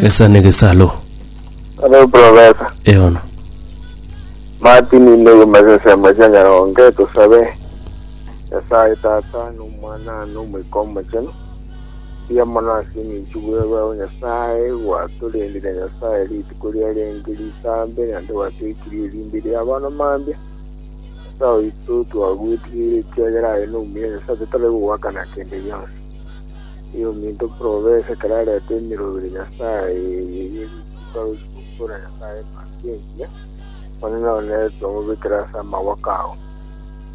Gesa ne gesalo. Hello profesa Eono. Martin inde kumasesemo cia nyaronge tusabe nyasaye tata nomwana nomoika omochenu mbuya mono ase eng'encho bwebao nyasaye gwatorendire nyasaye rituko ria renge ritambe naende gwatoikirie erinde ria abono mambia nyasaye oito twagwetigire ekiagera aye nomuya nyasaye totari kogwakana kende gionsi Ee, ominto bw'obese ekero areta emiroro ire Nyasae eye ye rituko agochia gokuura Nyasae embaasi engiya, Omonene oneete omobekere ase amagwaka ao.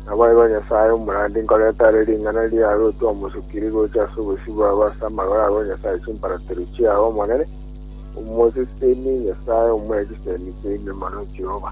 Nabo aye ba Nyasae omorandi nkorete are ring'ana riaye arotwe omosukiri gocha ase obosio bwabo ase amagoro abo Nyasae chimparatero chiao Omonene, omoseseni, Nyasae omwe chisemi chiaino mono Jehova.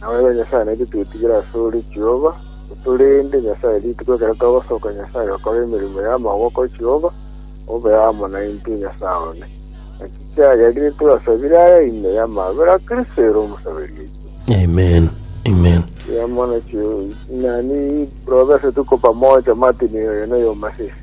Nawe ere Nyasae naitwe twetigire asore, Jehova, otorende, Nyasae, rituko ekero togosoka, Nyasae, okore emeremo y'amaboko, Jehova, obe amo naintwe, Nyasae one. Naki kiagerire twasabire aya ime y'amabera a Kristo ere omosaberi oito. Amen. Amen. Eamana chie inani, robe ase tuko pamoja Martin oyo noyomo ase ise.